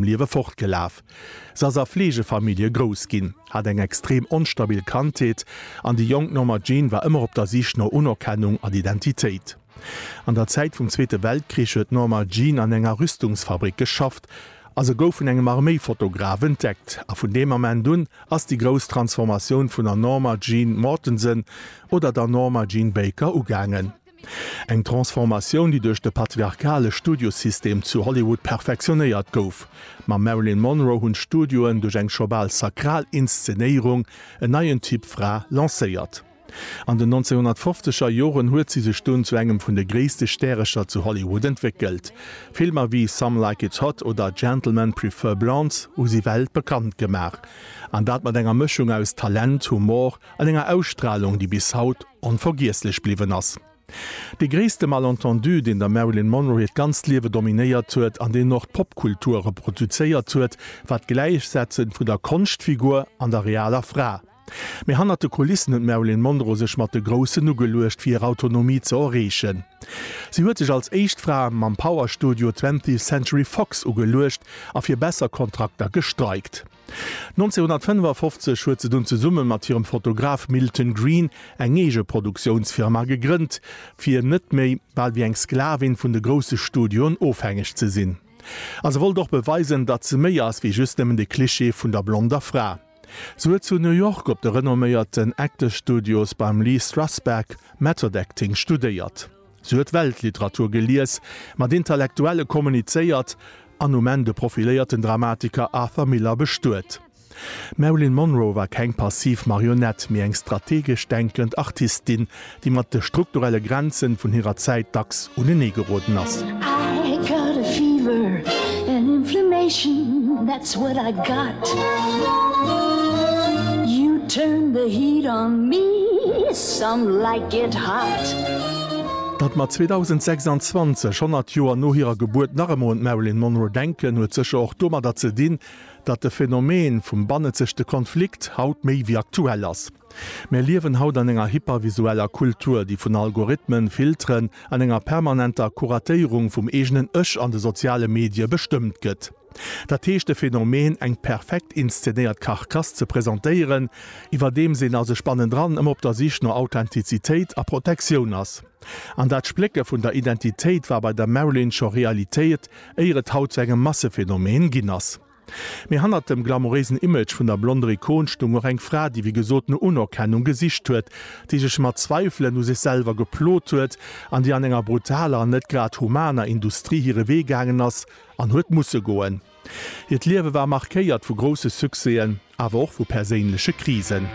dem Liewe fortgelaf. Se ass a Fleegefamillje grouss ginn, hat eng extrem onstabil Kandheet an déi jonk Norma Jean war ëmmer op der Sich no Unerkennung an Identitéit. An der Zäit vum Zweete Weltkrich huet d'Norma Jean an enger Rüstungsfabrik geschafft a se gouf vun engem Arméifotograf entdeckt. A vun deem Ament un ass déi grouss Transformatioun vun der Norma Jean Mortensen oder der Norma Jean Baker ugaangen. Eng Transformatioun, déi duerch de patriarchale Studiosystem zu Hollywood perfektionéiert gouf. Mam Marilyn Monroe hunn d'Studioen duerch eng scho bal sakral Inszenéierung en neien Typ Fra lancéiert. An den 1950er Joren huet si sech dunn zu engem vun de gréisste Stärecher zu Hollywood entwéckelt. Filmer wéi Some Like It Hot oder Gentlemen Prefer Blondes hu si weltbekannt gemaach. An dat mat enger Mëschung aus Talent, Humor an enger Ausstralung, déi bis haut onvergiesslech bliwwen ass. Dee gréisste Malentendu, deen der Marilyn Monroe hiert ganzt Liewe dominéiert huet an deen och d'Popkultur reproduzéiert huet, war d'Gläichsetze vu der Konschtfigur an der realer Fra. Mee hannert de Kulissen huet d'Marilyn Monroe sech mat de Groussen ugeluecht, fir hir Autonomie ze erreechen. Si huet sech als éischt Fra mam Power-Studio Twentieth Century Fox ugeluecht a fir besser Kontrakter gestreikt. 1955 huet se dunn zesumme mat hirem Fotograf Milton Green eng eege Produktiounsfirma gegrënnt, fir net méi bal wéi eng Sklavin vun de grousse Studioen ofhängeg ze sinn. A se wollt och beweisen, datt se méi ass wéi just nëmmen de Klischee vun der blonder Fra. Se huet zu New York op de renomméierten Actors Studios beim Lee Strasberg Method Acting studéiert. Si huet Weltliteratur gelies, mat Intellektuelle kommunizéiert an um Enn de profiléierten Dramatiker Arthur Miller bestuet. D'Marilyn Monroe war keng passiv Marionett, mee eng strategesch denkend Artistin, déi mat de strukturelle Grenze vun hirer Zäit dacks unenee geroden ass. Datt mer 2026, 100 Joer no hirer Gebuert, nach ëmmer un d'Marilyn Monroe denken, huet sécher och domadder ze dinn, datt de Phänomen vum bannenzegte Konflikt haut méi wéi aktuell ass. Mir liewen haut an enger hypervisueller Kultur, déi vun Algorithmen, Filteren an enger permanenter Kuratéierung vum eegenen Ech an de soziale Medie bestëmmt gëtt. Dat heescht de Phänomen, eng perfekt inszenéiert Karkass ze presentéieren, iwwerdeems een a sech bannendran ëmmer op der Sich no Authentizitéit a Protektioun ass. An dat Splécke vun der Identitéit war bei der Marilyn scho Realitéet, éier et haut zu engem Massephänomen ginn ass. Mee hannert dem glamouréisen Image vun der blonder Ikon stung och eng Fra, déi wéi gesot no Unerkennung gesicht huet, déi sech mat Zweifelen u sech selwer geplot huet an déi an enger brutaler an net grad humaner Industrie hire Wee gaangen ass, An huet musse goen. Hiert Liewe war markéiert vu grousse Succèsen, awer och vu perséinleche Krisen.